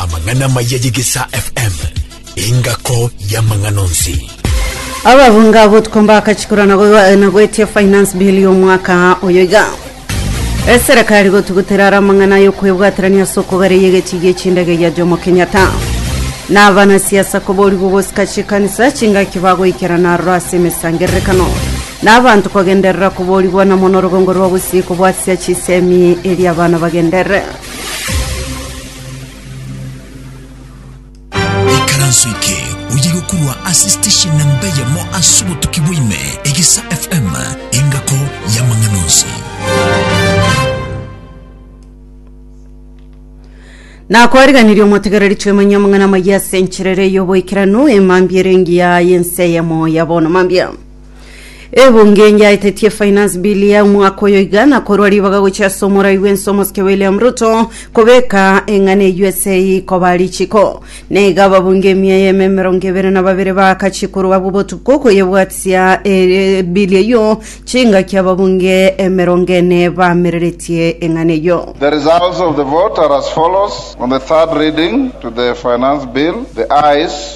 Amang'ana amaya y'egesaa FM, engako y'amang'ana onsi. ababunga abo tukombaka chikura na go- na goetia finance bill y'omwaka oyo iga eserekari gotugutera ara amang'ana y'okwebwaterania ase okogare y'egechi gi'echindege gia jomo kenyatta na abanasiasa koborigwa gosika chikanisa chingaki bagoikerana aroro ase emesangererekano Na abanto kogenderera koborigwa na mono rogongo rwa bosio kobwatia chisemi erio abana bagendere. Ikaranso eke oye gokurwa ase station na mbeyemo ase obotuki bwaime Egisa FM engako y'amang'ana onsi. Na kwariganirie omotegereri twemanyia amang'ana amaya ase enchera ere y'oboikeranu emambia ere engiya y'ense eyemo ya bono mambia. Ebunge enyaetetie finance bill ya omwaka oyo iga na korwa ribaga gochia ase omorai bw'ense omosike William Ruto kobeka eng'ana eyio ase rikoba richiko. Na iga ababunge emia y'eme emerongo ebere na babere baakachi korwa abwo botuko koyebwatia eh, bill eyio chingaki ababunge emerongo ene baamereretie eng'ana eyio. The results of the vote are as follows. On the third reading to the Finance Bill, the ayes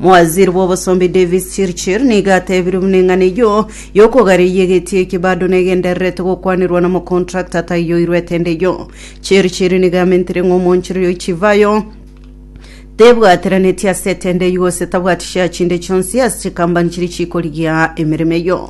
Mowaziri bw'obosomba Davis Chirchir nigo atebirie buna eng'ana eyio y'okogareyia egeti eki bado negendererete gokwanirwa na mocontractor taiyo oirwete ende eyio. Chirchir nigo amentire ng'a omonchiri oyo chivayo tebwateranetie ase etendo eyio gose tabwati share chinde chionsi ase chikampani chiria chikorigia emeremo eyio.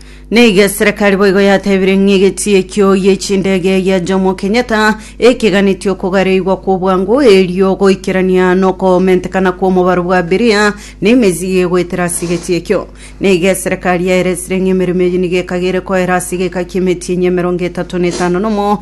Naiga eserekari boigo yatebire ng'a egetii ekio y'echindege gia Jomo Kenyatta ekeganetie okogareigwa kw'obwango erio goikerania nokomentekana kw'omobaro bwa abiria na emezigo egoetera ase egetii ekio. Naiga eserekari yaeresire ng'a emeremo eyio nigo ekagere koera ase egeka ki'emetinyi emerongo etato na etano nomo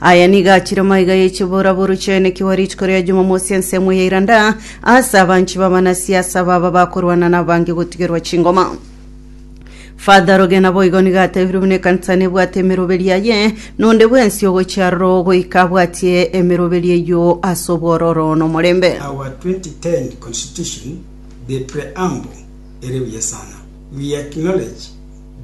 Aya nigo achire amaiga y'echie borabora ochaine kiwa rituko ria Jumamosi ensemo ya iranda, aase abanchi b'abanasiasa baba bakorwana nabange gotigerwa chingoma. Father Rogena boigo nigo atebirwe buna ekanisa nebwate emeroberi yaye, nonde bwensi ogochia aroro goika abwatie emeroberi eyio ase obwororo nomorembe. Our 2010 Constitution, the Preamble, ere buya sana. We acknowledge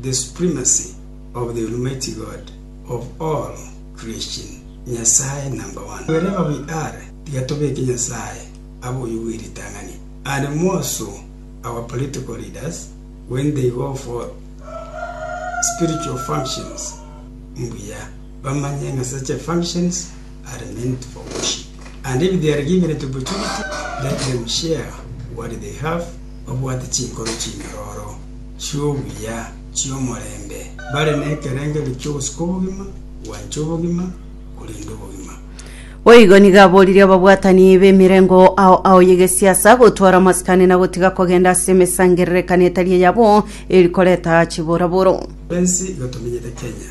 the supremacy of the Almighty God. of all creation, Nyasae number one. Wherever we are, tiga tobeke Nyasae abe oyio bwe ritang'ani and more so our political leaders when they go for spiritual functions mbuya bamanye ng'a such functions are meant for worship and if they are given an opportunity let them share what they have babwate chinkoro chinyororo chi'obuya chi'omorembe. Bare nekerengerio ki'ogosika obogima, gwancha obogima, korenda obogima. Boigo nigo aboririe ababwatani b'emerengo ao ao y'egesiasa gotwara amasikani na gotiga kogenda ase emesangererekano etari eyabo eri koreta chiboraboro. Twensi iga tomenyete Kenya.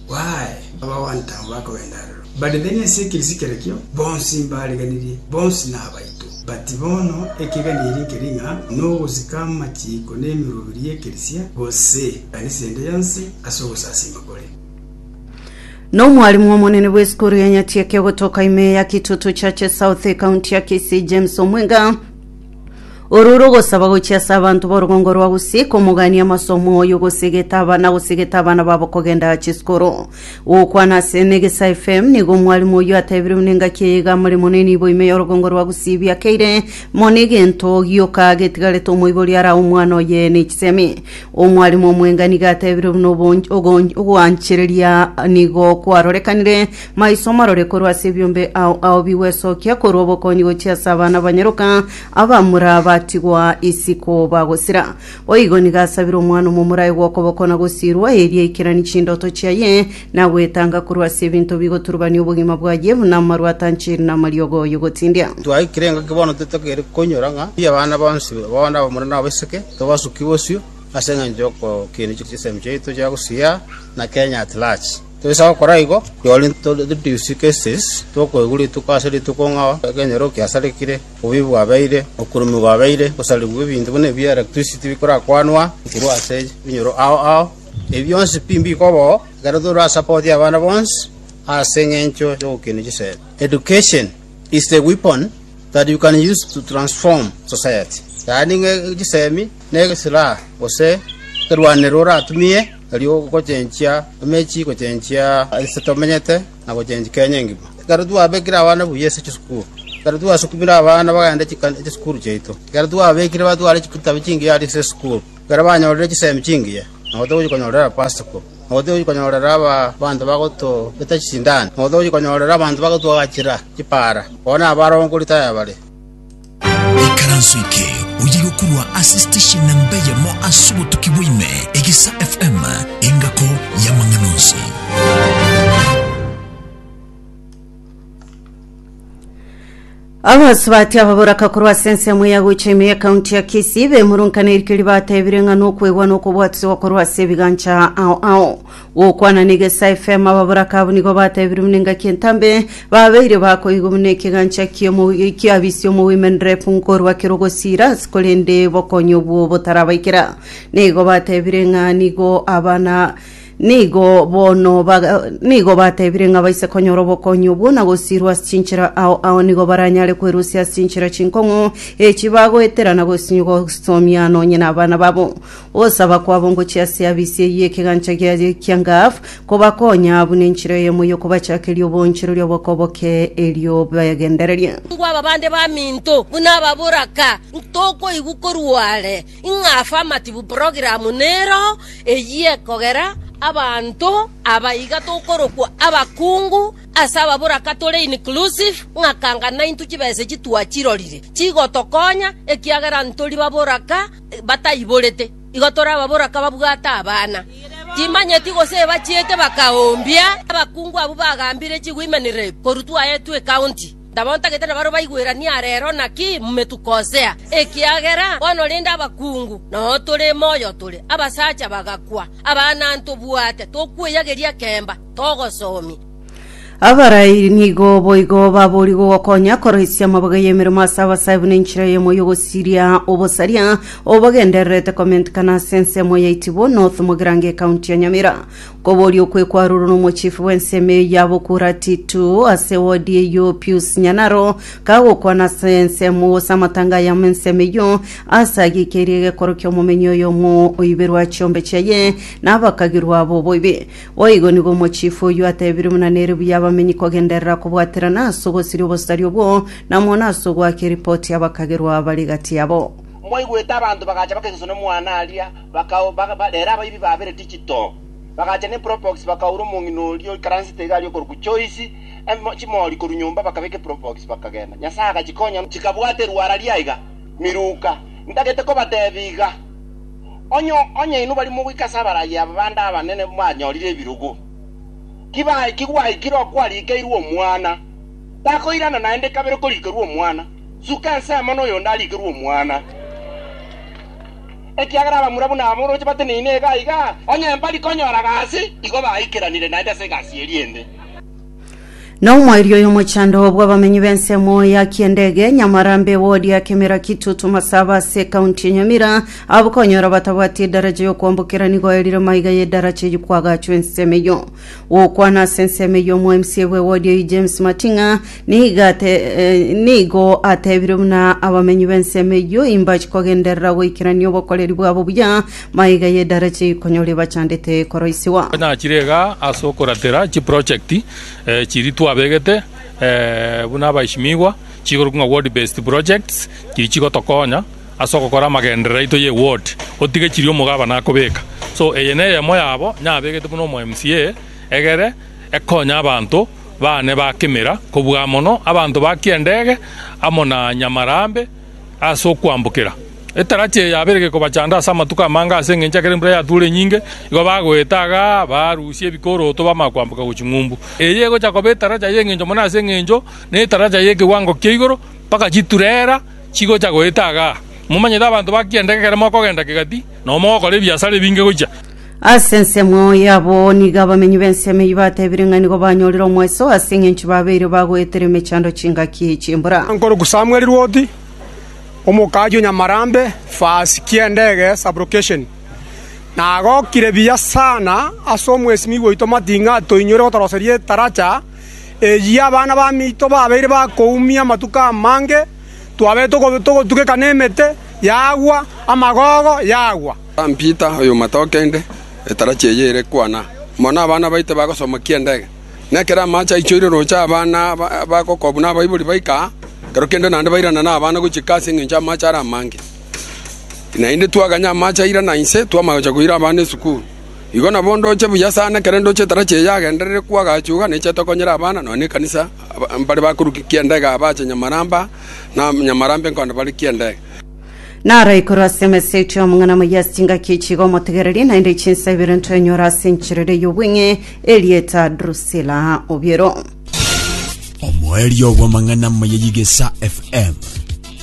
Baae, abagwanta abo bakogenda aroro, barigerie ense ekerisi kerekio, bonsi mbariganirie, bonsi nabaito. But bono ekegani eri nkeri ng'a nogosika amachiiko n'emerwori y'ekerisia, gose ekanisa ende yonsi, ase ogosasiima kore. Na omwalimu omonene bw'esukuru ya Nyatieke ogotoka ime ya Kitutu Church South, ekaunti ya Kisii, James Omwenga, Oro rogosaba gochia ase abanto b'orogongo rwa Gusii komogania amase omwoyo gosegeta aba na gosegeta abana babo kogenda chisikoro. Gokwana ase Negesa FM nigo omwarimu oyio atebirwe n'engaki eye iga more mono enibo ime y'orogongo rwa Gusii biakeire mono egento gioka getigarete omoibori arae omwana oye n'echisemi. Omwarimu omwenga nigo atebirwe buna obonch- ogon- ogwanchereria nigo kwarorekanire Maiso marore korwa ase ebiombe ao ao bigwesokia korwa obokonyi gochia ase abana banyaroka abamura batigwa isiko bagosira. Boigo nigo asabire omwana omomura aye gw'okoboko na gosiirwa, erio aikeranie chindoto chiaye na gwetanga korwa ase ebinto bigoturubania obogima bwaye, buna amaru atanchiri na amariogo y'ogotindia. Twaikire enga ki bono totagere koinyora ng'a pi abana bonsi bao nabamura na abaiseke tobasukigwe bosio ase engencho y'okokinia chisemi chiaito chia gosiya na Kenya at large. Toisa gokora igo, tware introduce cases tokoigwa rituko ase rituko ng'a ekenyoro kiasarigire, obuya bwabeire, okurumigwa gwabeire, gosarigwa ebinto buna ebi electricity bikorakwanwa korwa ase ebinyoro ao ao. Ebi bionsi pi mbiko bo ekero tore a support y'abana bonsi ase eng'encho y'ogokina chisemi. Education is the weapon that you can use to transform society, yaani ng'a chisemi nesiraha gose ekerwanero oratumie. erio gochenchia emechie, gochenchia aase tomenyete, na gochenchia Kenya engima. Ekero twabekire abana buya ase chisukuru, ekero twasukumire abana bagende chisukuru chiaito, ekero twabekire batware chitabu chingiya aria ase esukuru, ekero banyorire chisemi chingiya, nabo togochia konyorera abapasoko, nabo togochia konyorera abanto bagotobeta chisindani, nabo togochia konyorera abanto bagotwagachera chipara, bono abarongo rirotae bare. Ikaranso eke oye gokurwa ase station namba eyemo ase obotuki bwa ime, Egisa FM, engako y'amang'ana onsi. abasubati aba boraka korwa ase ensemo ya gocha ime ya kaunti ya kisii bemurunkaneirie ribatebire ng'a nokwegwa na okobwatiswa korwa ase ebigancha ao ao Gokwana nigo ase efemo ababoraka abwo nigo batebirwe buna engaki entambe, babeire bakoigwa buna ekegancha ki'omowi- ki'abisia omowimenerefu nkorwa kera ogosiira, korende bokonyi obwo botarabaikera. Nigo batebire ng'a nigo abana nigo bono baga nigo batebire ng'a baise konyora obokonyi obwo na gosiirwa ase chinchera ao ao nigo baranyare kwerusia ase chinchera chinkong'u echi bagoetera na gosinywa gosomia nonye nabana babo. Ogosaba kwabo ngochiasie abisieyie ekegancha gia Rekiangaf, kobakonya abwo nenchera eyemo y'okobachakeria oboonchere oria oboke-boke erio begendererie. Ngwa aba bande baminto buna aba boraka ntokoigwa korwa are, ing'afa amatibu program nero eyie kogera abanto aba iga tokorokwa abakungu ase aba boraka tore inclusive ng'akanga naintwe chibesa echi twachirorire chigotokonya ekiagera ntori baboraka bataiborete, igo torababora kababwate abana. Timanyeti gose bachiete bakaoombia. Abakungu abwo bagambire chiwomen rep korwa twaetwe ecounty, ntabaontagete na barabwo baigweranie arero naki mometuko osea, ekiagera bono rende abakungu nao tore moyo tore. Abasacha bagakwa, Abana ntobwate tokweyageria kemba, togosomia. Abarai nigo boigo babori gogokonya koroisia amabaga y'emeremo ase abasae buna enchera eyemo y'ogosiria obosaria obagendererete komentikana ase ensemo ya Itibo North Mogirango ekaunti ya Nyamira. Koboria okwe kwarurwa n'omochifu bw'ensemo eye ya Bokura T2 ase wodi eyio Pius Nyanaro kagokwana ase ensemo gose amatanga ayamo ensemo eyio ase agikeirie egekorokio omomenyi oyomo oiberwa chiombe chiaye na abakagirwa abo boibi. Boigo nigo omochifu oyio atebirie buna nere buya abamenyi kogenderera kobwaterana ase ogosiria obosari obwo, na mono ase ogoaka eripoti abakagerwa abare gati yabo. Mwaigwete abanto bagacha bakesusa nomwana aria, bakau, ba, ba, rero abaibi babere digital, bagacha ne probox bakaura omong'ina oria oikaransete iga aria okorokwa Joyce, em, chimori korwa nyomba bakabeka eprobox bakagenda. Nyasae agachikonya chikabwata erwara riaiga, miruka. Ntagete kobatebia iga. Onye, onye inwe baria mogoika ase abaragi aba bande abanene mwanyorire ebirogo, tibaikigwe gwaikire okwarigeirwe omwana, takoirana naende kabere korigerwa omwana, suka ensemo noyonde arigerwe omwana. Ekiagera abamura buna aba oroche bateneine iga iga, onye mbari konyora gasi, igo baikeranire naende ase egasi eria ende. Na omoerio y'omochando bw'abamenyi b'ensemo ya kiendege nyamarambe wodi ya kemera kitutu masaba ase kaunti ya nyamira abo konyora batabwati edaraja yokwambokera nigo erire maiga y'edaraja eyi kwagachwa ensemo eyo gokwana ase ensemo eyo omo mca bwe wodi eyi james mating'a niga ate, eh, nigo atebire buna abamenyi b'ensemo eyo imbachi kogenderera goikerania obokoreri bwabo buya Maiga y'edarachi konyori bachandete koroisigwa. Tonyachire iga ase okoratera chiprojekti eh, chiria twabegete eh, buna abaishimiigwa, chikorokwa ng'a ward based projects, chiria chigotokonya ase ogokora amagenderero aito ye ward, otige chiria omogabana akobeka. So eye neyemo yabo nyabegete buna omo MCA egere ekonye abanto bane ba Kimira, kobua mono abanto ba Kiendege amo na Nyamarambe, ase okwambokera. Etarachi eye yabeire gekobachanda ase amatuko amange ase engencho ekero embura yatuure nyinge, igo bagoeta iga barusie ebikoroto bamanya kwamboka gochia Ng'umbu. Eye egocha koba etaracha y'engencho mono ase engencho netaracha y'ekewango kia igoro mpaka chiturera chigocha goeta iga. Momanyete abanto ba kianda ekero mogokenda kegati, nao mogokora ebiasara ebinge gochia. Ase ensemo yabo nigo abamenyi b'ensemo eyio batebire ng'a nigo banyorire omoeso ase engencho babeire bagoetera emechando chingaki chi'embura. Nkoruku Samuel Rwoti, omokaji o Nyamarambe, Fasi Kiendege Sub-location, nagokire buya sana ase omwesimigwa oito Martin ng'a toinyore gotoroseria etaracha eyio abana bamito babeire bakoumia amatuko amange, twabeire togotugeka nemete yagwa, amagogo yagwa. San Pita oy'omata o kende, etarachi eye ere kwana mono nabana baito bagosomokia endege, na ekero amache aichoire roche abana bagokwa buna abaibori baika aa, ekero kende naende bairana nabana gochika ase engencho amache are amange. Naende twaganya amache airana inse, twama gocha koira abana esukuru. Igo nabo ndoche buya sana, ekero ndoche etarachi eye yagenderire kwo agacha iga, neche tokonyera abana nonya na ekanisa mbare bakorukia endege aa bache Nyamaramba, na Nyamaramba enkonda barekie endege. Naro igoro ase emesa eito y'omong'ina moyia ase chingaki echi iga omotegereri, naende echinsa ibere ntwenyora ase encherero y'obweng'e erieta Drusila obiero. Omoerio bw'amang'ana maya y'Igesa FM,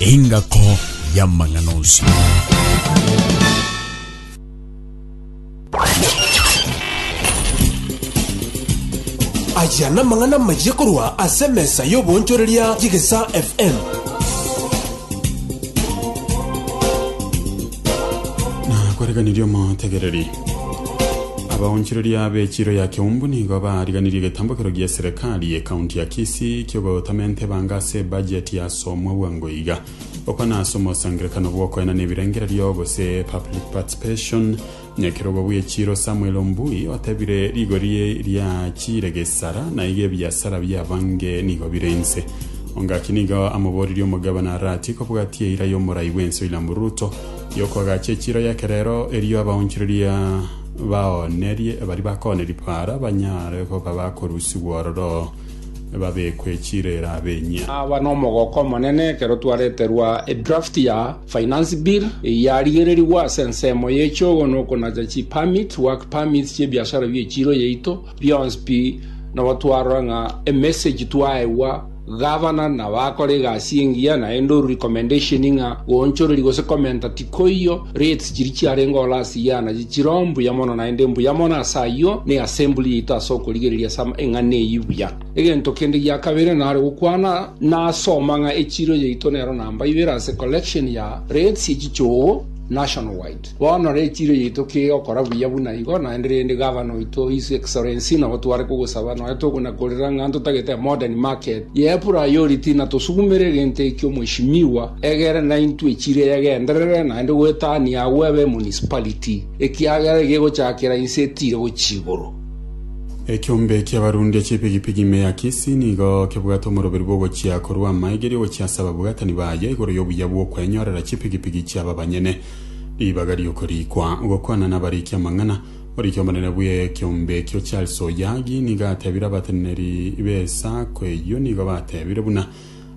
engako y'amang'ana onsi. Aya namang'ana amayia korwa ase emesa y'oboonchoreria y'Egesaa FM. Nakwareganirie omotegereri. Abaonchoreria b'echiro ya Keumbu nigo bariganirie egetambokero gia eserekari y'ekaunti ya Kisii kiogotama entebanga ase ebajeti yasomwa bwango iga. gokwana ase omosangererekano bw'okoenana ebirengererio gose public participation. Nyakerogo bw'echiiro Samuel Ombui otebire rigori riachiire gesara na iga ebiasara biabange nigo bire inse. Ongaki nigo amoborerie omogabana Arati kobwatia eira y'omorai bw'ense William Ruto yokoagacha echiiro y'ekerero erio abaonchoreria baoonerie bari bakooneria para banyare koba bakorusigwa ororo babekwe chirera b'enyia. Aba nomogoko omonene ekero twareterwa edraft ya finance bill eya rigererigwa ase ensemo y'echogo na okonacha chi permit, work permits, chi'ebiasara bi'echiro yaito. Bionsi pi nabo twarora ng'a emessage twaegwa Governor na bakora egasi engiya naende oru recommendation ng'a goonchoreri gose commenter ti Koiyo rates chiria chiarenge ore ase iye anachio chiro mbuya mono naende mbuya mono ase ayio ne assembly yaito ase okorigereria ase eng'ana eyio buya. Egento kende gia kabere nare gokwana na ase omang'a echiro yaito nero namba ibere ase collection ya rates ye chichoogo national wide. Bono re echiro yaito kegokora buya buna igo naende rende Governor oito His Excellency nabo tware kogosaba nonya togonakorera ng'a ntotagete a modern market. Y'epura y'oria tinatosugumera egento ekio mweshimiwa egere naintwe chire yegenderere naende gwetania agwo ebe emunicipality, ekiagera egegochakera inse etire gochia igoro. Ekiombe ki'abarundi ech'epigipigi ime ya Kisii nigo kebwate omoroberi bw'ogochia korwa amaegeri ogochia ase ababwatani baye igoro y'obuya bw'okwenyorera chipigipigi chiabo abanyene ribaga ri'okoriikwa. Gokwana nabariiki amang'ana. Oriki omonene bw'ekeombe ekio Charles Oyagi nigo atebire abateneneri b'esaako eyio nigo batebire buna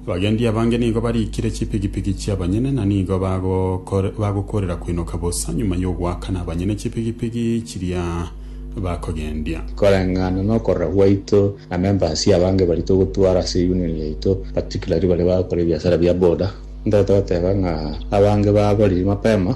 abagendi abange nigo barikire chipigipigi chi'abanyene na nigo bagokor- bagokorera koinoka bosa nyuma y'ogoakana abanyene chipigipigi chiria bakogendia. Koreng'ana nokorora gwaito na members abange baria togotwara ase union yaito particularly baria bagokora ebiasara bia boda, ntagete goteba ng'a abange baboriri mapema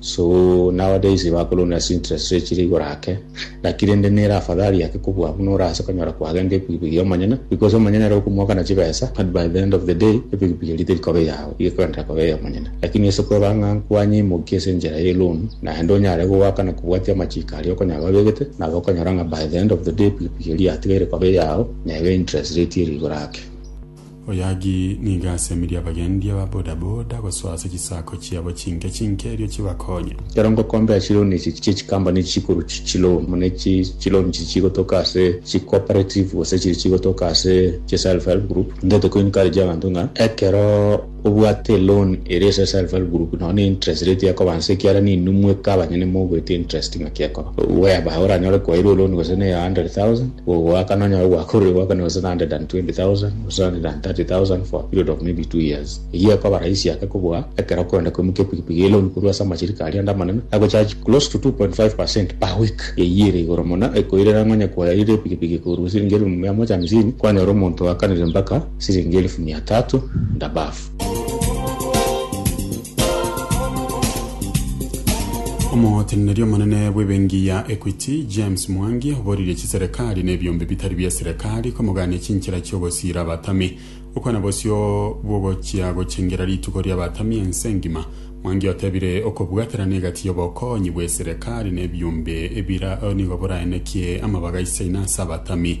So nao days bakorunda ase interest rate chire igoro ake, naki rende nere afadhali ake kobua buna ore ase konyora kwagenda epikipiki y'omonyene, because omonyene ere okomoakana chibesa, but by the end of the day epikipiki eria teri koba eyao, iga ekogenderera koba ey'omonyene. Lakini ase kweba ng'a nkwanyeimokia ase enchera ye loan, naende onyare gogoakana kobwatia amachiiko aria okonyora babegete, nabo okonyora ng'a by the end of the day epikipiki eria yatigaire koba eyao, nebe interest rate ere igoro ake. Oyagi nigo asemirie abagendia ba boda boda gosoa ase chisaako chiabo chinke chinke erio chibakonye. Ekero ngokombea chiloan echi chia chikambani echi chikorwa chiloan buna echi chiloan echi chigotoka ase chicooperative gose chiri chigotoka ase chiself help group, ntoete koencourage abanto ng'a ekero. obwate loan ere ase self help group nonye ne interest rate ekoba nse ekiara ninwe mweka abanyene mogoeta interest ng'aki ekoba whereby oranyore kwairwe loan gose ne ya 100,000 gogoaka nonyore gwakorire goakana gose ne 120,000 gose 130,000 for a period of maybe two years eyio ekoba rahisi ake kobua ekero okorenda koimokia epikipiki eye loan korwa ase amashirika aria ande amanene agocharge close to 2.5 percent per week eyio ere igoro mono ekoirera ng'a onye kwayaire epikipiki korwa siringi elfu mia moja hamsini kwanyora omonto oakanire mpaka Siringi elifu mia tatu ndabafu. Omoteneneri omonene bw'ebengi ya Equity, James Mwangi, oboririe chiserekari na ebiombe bitari bia serekari komogania chinchera chi'ogosiira abatami. Okwana bosio bw'ogochia gochengera rituko ri'abatami ense engima. Mwangi otebire okobwaterana egati y'obokonyi bw'eserekari na ebiombe nigo boraenekie amabaga isaino ase abatami.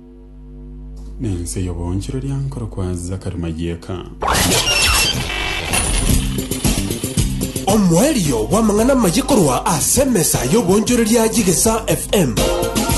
Nense y'oboonchoreria nkorokwa Zakari Mayeka. Omoerio bw'amang'ana amaye korwa ase emesa y'oboonchoreria y'Egesaa FM.